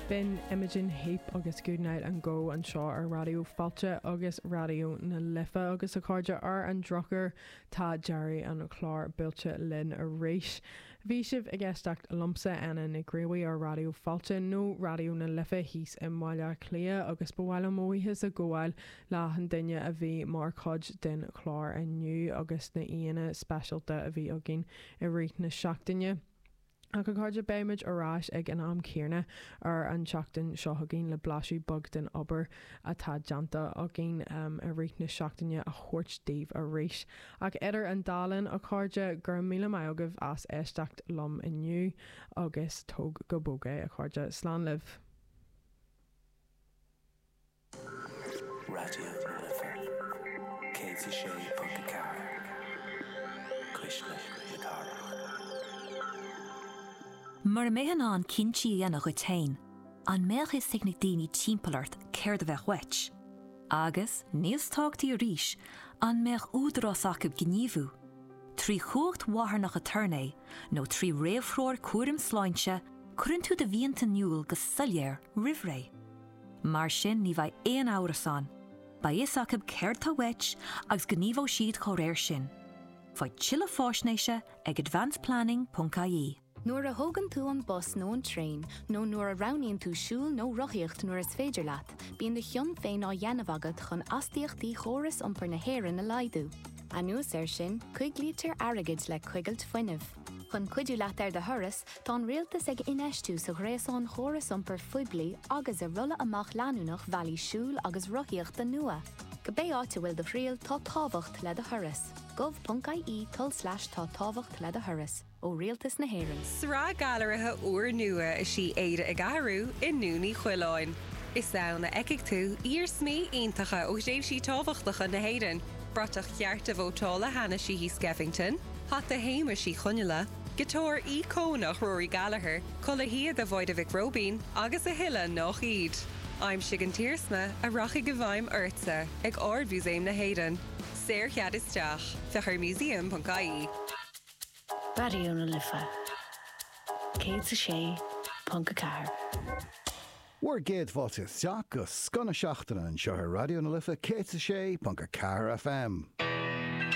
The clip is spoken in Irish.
B'in Imogen Heap agus Goodnight and Go anseo ar Raidió Fáilte agus Raidió na Life agus a chairde ar an drochuair tá deireadh an chláir buailte linn arís. Bhí sibh ag éisteacht liomsa Áine Ní Ghríofa ar Raidió Fáilte nó Raidió na Life thíos i mBaile Átha Cliath agus ba mhaith liom mo bhuíochas a ghabháil le achan duine a bhí mar chuid den chlár inniu agus na aíonna speisialta a bhí againn i rith na seachtaine. Ach a chairde, beimid ar ais ag an am céarna ar an tseachtain seo chugainn le blaiseadh beag den obair atá déanta againn i rith na seachtaine a thabhairt daoibh arís. Ach idir an dá linn, a chairde, gura míle maith agaibh as éisteacht liom inniu agus tóg go bog é, a chairde. Slán libh. Raidió na Life 106.4 Cuisle na Cathrach. Mura mbeifeá in ann cinntí a dhéanamh dhuit féin, an mbeadh fhios ag na daoine timpeall ort céard a bheadh uait? Agus, níos tábhachtaí arís, an mbeadh údarás acu gníomhú, trí chumhacht mharthanach aturnae nó trí réamhthreoir cúraim sláinte, cuireann tú do mhianta in iúl go soiléir roimhré. Mar sin ní bheidh aon amhras ann. Beidh fhios acu céard tá uait agus gníomhóidh siad dá réir sin. Faigh tuilleadh faisnéise ag advanceplanning.ie. Nuair a thógann tú an bus nó an traein, nó nuair a roghnaíonn tú siúl nó rothaíocht nuair is féidir leat, bíonn do chion féin á dhéanamh agat chun astaíochtaí chóras iompair na hÉireann a laghdú. Anuas air sin, coiglítear airgead le coigilt fuinnimh. Chun cuidiú leat ar do thuras, tá an Rialtas ag infheistiú sa ghréasán chóras iompair phoiblí agus i rolladh amach leanúnach bhealaí siúil agus rothaíochta nua. Cibé áit a bhfuil do thriall, tá tábhacht le do thuras. gov.ie tulslais Tá tábhacht le do thuras. ó Rialtas na hÉireann. Sraith gailearaithe úrnua is í Éire ag Athrú i nDún Uí Choileáin. Is ann a fheicfidh tú iarsmaí iontacha ó thréimhsí tábhachtacha na hÉireann, bratach chearta vótála Hanna Sheehy Skeffington, hata Shéamuis Uí Chonaile, giotáir íocónach Rory Gallagher, culaith shíoda Mháire Mhic Róibín agus a thuilleadh nach iad. Aimsigh an t-iarsma a rachaidh i bhfeidhm ortsa ag Ard-Mhúsaem na hÉireann. Saorchead isteach. Féach ar museum.ie. Raidió na Life 106.4. Bhur gcéad bhailte isteach go scoth na seachtaine anseo ar Raidió na Life 106.4 FM.